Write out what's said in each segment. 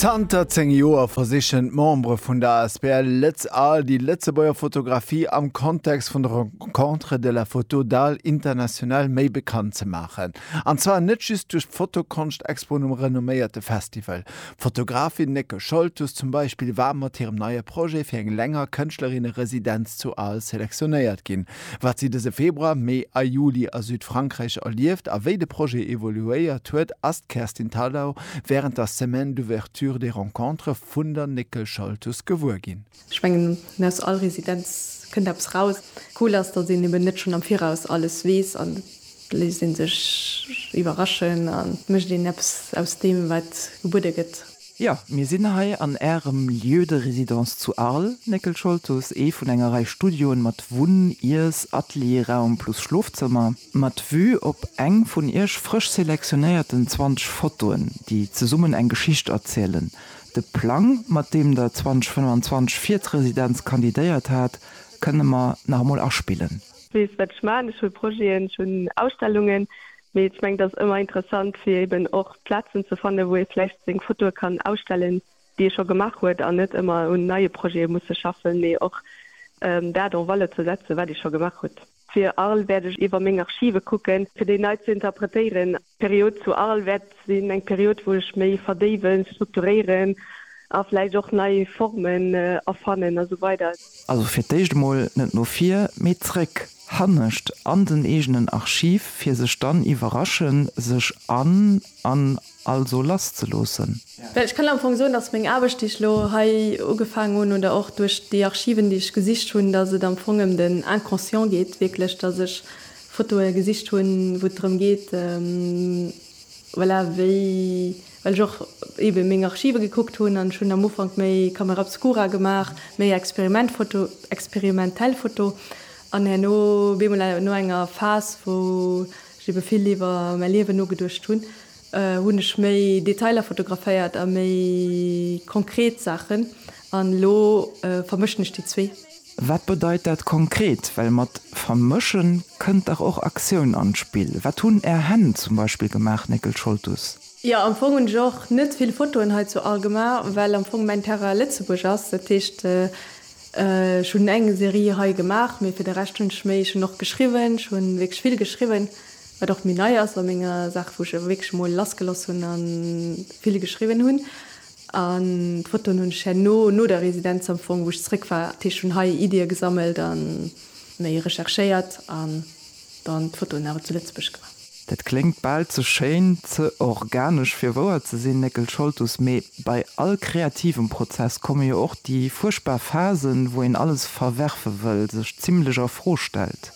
Zanter 10 Joer versichen d'Membere vun der asbl Lëtz Arles déi Lëtzebuerger Fotografie am Kontext vun der Rencontre de la Photo d'Arles International méi bekannt ze maachen. An zwar net just duerch d'Fotokonscht Expo um renomméierte Festival. D'Fotografin Neke Scholtus zum Beispill war mat hirem neie Projet fir eng länger Kënschtlerinne Residenz zu Arles selektionéiert ginn. Wat si dëse Februar, Mee a Juli a Südfrankräich erlieft a wéi de Projet evoluéiert huet, ass d'Kerstin Thalau wärend der Semaine d'ouverture des rencontres vun der Néckel Schaltus gewuer ginn. Ech mengen, aus all Residenz kënnt eppes raus. Cool ass, datt een eben net schonn am Viraus alles weess an et léisst ee sech iwwerraschen an et mécht een eppes aus deem, wat gebuede gëtt. Jo, mir sinn hei an Ärem Lieu de résidence zu Arles, Néckel Scholtus, ee vun enger Rei Studioen mat Wunn-, Iess-, Atelierraum plus Schlofzëmmer, mat Vue op eng vun Iech frësch selektionéierten 20 Fotoen, déi zesummen eng Geschicht erzielen. De Plang, mat deem Der 2025 fir d'Residenz kandidéiert hat, kënne mer nach emol aspillen. Weess, wat ech man, Ech hu Projeten, ech hunn Ausstellungen, Mee ech mengen, et ass ëmmer interessant, fir eben och Plazen ze fannen, wou ee vläicht seng Fotoe kann ausstellen, déi ee scho gemaach huet, an net ëmmer un neie Projete musse schaffen, mee och dat en valeur ze setzen, wat ee scho gemaach huet. Fir Arles wäert ech iwwer meng Archive kucken, fir déi nei ze interpretéieren. D'Period zu Arles wäert sinn eng Period wou ech méi verdéiwen, strukturéieren a vläicht och nei Formen erfannen a sou weider. Also fir d'éischt emol net no vir, mee zréck, hannescht an den eegenen Archiv, fir sech dann iwwerraschen, sech an an also lasszeloossen. Well ech kann am Fong soen, dass meng Aarbecht, déi ech elo hei ugefaangen hunn, oder och duerch déi Archiven, déi ech gesicht hunn, dass et am Fong ëm den Inconscient geet, wierklech, dass ech Fotoe gesicht hunn, wou et drëm geet, Voilà, wéi, well ech och ebe meng Archive gekuckt hunn an ech hunn am Ufank méi Camera obscura gemaach, méi Experimentfoto, experimentell Foto an herno bemol no enger Phas, wou ech ebe vill iwwer mäi Liewen nogeduecht hunn, hunn ech méi Detailer fotograféiert a méi konkret Saachen. An elo vermëschen ech déi zwee. Wat bedeit dat konkret? Well mat vermëschen kënnt dach och Aktioun an d'Spill. Wat hunn är Hänn zum Beispill gemaach, Néckel Scholtus? Jo, am Fong hunn ech och net vill Fotoen hei zu Algemar, well am Fong mäin Terrain Lëtzebuerg ass. Dat heescht, ech hunn eng Serie hei gemaach, mee fir de Rescht hunn ech méi, ech hunn och geschriwwen, ech hunn wierklech vill geschriwwen, wat och méi nei ass a menger Saach, wou ech wierklech emol lassgeloss hunn a vill geschriwwen hunn. An d'Fotoen hunn ech herno, no der Residenz am Fong, wou ech zréck war, dat heescht hunn hei Iddie gesammelt a méi recherchéiert an dann d'Fotoen awer zu Lëtzebuerg gemaach. Dat kléngt bal ze schéin, ze organesch fir wouer ze sinn, Néckel Scholtus. Mee bei all kreativem Prozess komme jo och déi fuerchtbar Phasen, wou een alles verwerfe wëll, sech zimlech a Fro stellt.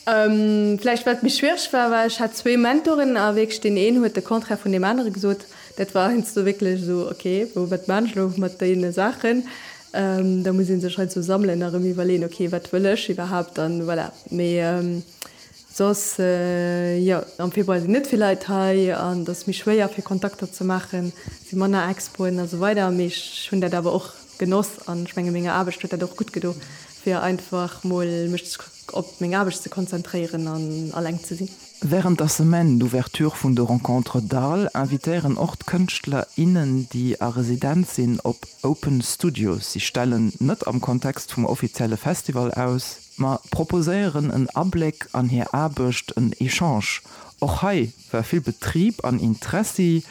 Vläicht wat méi schwiereg war, war ech hat zwee Mentorinnen a wierklech deen een huet de Contraire vun deem anere gesot. Dat war heiansdo wierklech esou, ok, bon wat man ech elo mat deene Saachen? Da muss ee sech heiansdo sammelen a rëm iwwerleeën, ok wat wëll ech iwwerhaapt an voilà. Mee soss jo, am Februar sinn net vill Leit hei an et ass méi schwéier fir Kontakter ze maachen, et si manner Expoen esou weider. Mee ech hunn dat awer och genoss an ech menge menger Aarbecht huet dat och gutt gedo. Fir einfach mol mech op meng Aarbecht ze konzentréieren an alleng ze sinn. Wärend der Semaine d'ouverture vun de Rencontres Dall invitéieren och d'Kënschtler, innen déi a Residenz sinn op Open Studios. Si stellen net am Kontext vum offizielle Festival aus, ma proposéieren en Abléck an hir Aarbecht, en Echange. Och hei War vill Betrib an Interessi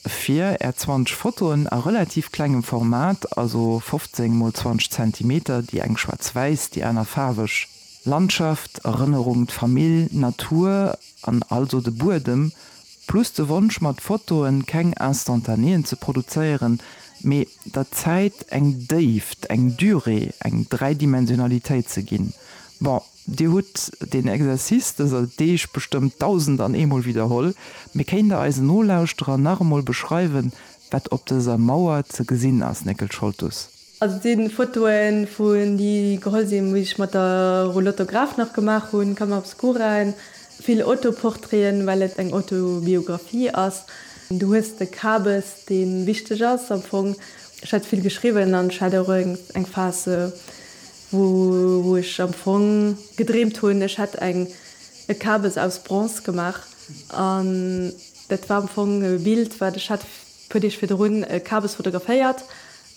fir är 20 Fotoen a relativ klengem Format, also 15 mol 20 Zentimeter, déi eng schwaarz-wäiss, déi aner faarweg, Landschaft, Erënnerung, d'Famill, Natur an also de Buedem, plus de Wonsch mat Fotoen keng Instantanéen ze produzéieren, mee der Zäit eng Déift, eng Durée, eng Dräidimensionalitéit ze ginn. Bon. Dir hutt deen Exercice dëser Deeg bestëmmt dausend an eemol widderholl, mee kéint Der eisen Nolauschterer nach emol beschreiwen, wat op dëser Mauer ze gesinn ass, Néckel Scholtus? Also et sinn Fotoen vun déi geholl sinn wéi ech mat der Roulotte Graf nach gemaach hunn, Camera obscura, vill Autoportraiten well et eng Autobiographie ass. Du hues de Kabes deen wichteg ass am Fong. Ech hat vill geschriwwen an ech hat och eng Phase. wou ech am Fong gedreemt hunn, ech hätt eng e Kabes aus Bronze gemaach an dat war am Fong e Bild wat ech hat puer Deeg virdrun e Kabes fotograféiert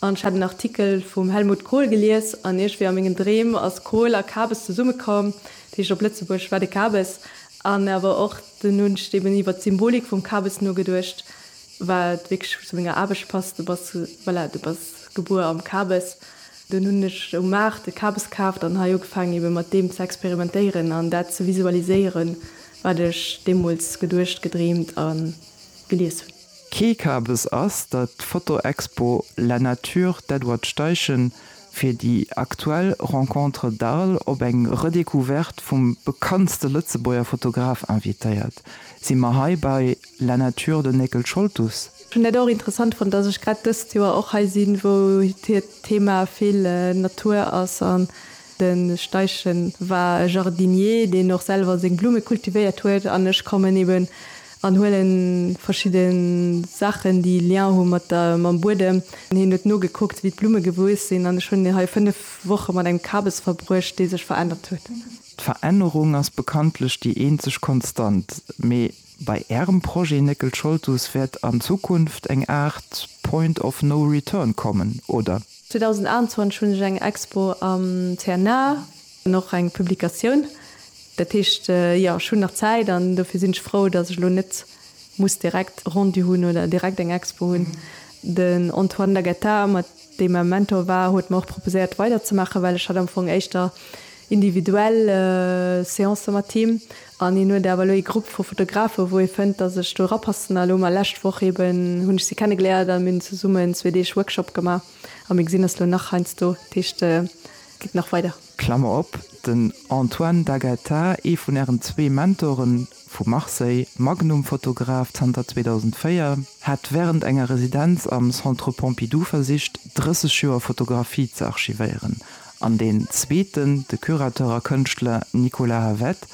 an ech hat en Artikel vum Helmut Kohl gelies an iergendwéi a mengen Dreem ass Kohl a Kabes zesumme komm, dat heescht op Lëtzebuergesch war de Kabes an awer och dunn hunn ech eben iwwert d'Symbolik vum Kabes nogeduecht wat wierklech zu menger Aarbecht passt, du bass voilà du bass gebuer am Kabes Dunn hunn ech um Maart e Kabes kaaft an hei ugefaangen ebe mat deem ze experimentéieren an dat ze visualiséieren, wat ech deemools geduecht, gedreemt a gelies hunn. Kee Kabes ass der d'Fotoexpo La Nature d'Edward Steichen fir déi aktuell Rencontres d'Arles op eng Redécouverte vum bekanntste Lëtzebuerger Fotograf invitéiert, si mer hei bei La Nature den Néckel Scholtus. Ech hunn dat och interessant fonnt, dass ech grad dëst Joer och hei sinn, wou hir Thema vill Natur ass. An de Steichen war e Jardinier, deen och selwer seng Blumme kultivéiert huet. An ech kommen eben an huele verschidde Saachen, déi Lien hu mat der, mam Buedem. An hien huet nogekuckt, wéi d'Blumme gewuess sinn. An ech hunn hei fënnef Woche mat engem Kabes verbruecht, dee sech verännert huet. D'Verännerung ass bekanntlech déi eenzeg Konstant. Mee Bei Ärem Projet Néckel Scholtus wäert an Zukunft eng Aart Point of no return kommen, oder? 2021 hunn ech eng Expo am CNA an och eng Publikatioun. Dat heescht, jo, ech hunn nach Zäit an dofir sinn ech frou, dass ech elo net muss direkt e Rendu hunn oder direkt eng Expo hunn. Den Antoine Laguetta, mat deem e Mentor war, huet mer och proposéiert weiderzemaachen, well ech hat am Fong éischter individuell Seancen mat him. An hien huet awer elo ee Grupp vu Fotografen, wou hie fënnt, datt ech do erapassen. A elo mar lescht Woch eeben hunn ech si kennegeléiert a mir hunn zesummen zwee Deeg Workshop gemaach a mir gesinn eis elo nach heiansdo. Dat heescht, et geet nach weider. Klammer op, Den Antoine D'Agata, ee vun Ären zwee Mentoren, vu Marseille, Magnum-Fotograf zanter 2004, hat wärend enger Residenz am Centre Pompidou versicht, 30 Joer Fotografie ze archivéieren An deen zweeten, de Curateur a Kënschtler Nicolas Havet,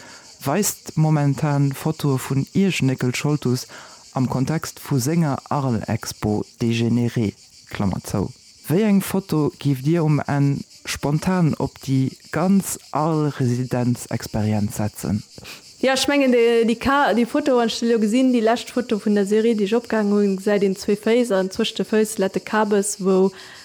weist momentan Fotoe vun Iechnéckel Scholtus am Kontext vu senger Arles-Expo Dégénéré. Klammer zou. Wéi eng Foto giift Dir um Enn spontan op déi ganz Arles-Residenz-Experienz setzen? Jo, ech mengen déi Ka, déi Foto, wann ech se elo gesinn, déi lescht Foto vun der Serie, déi ech opgehaangen hunn, gesäit een zwee Féiss an zwëscht de Fëiss lätt de Kabes, wou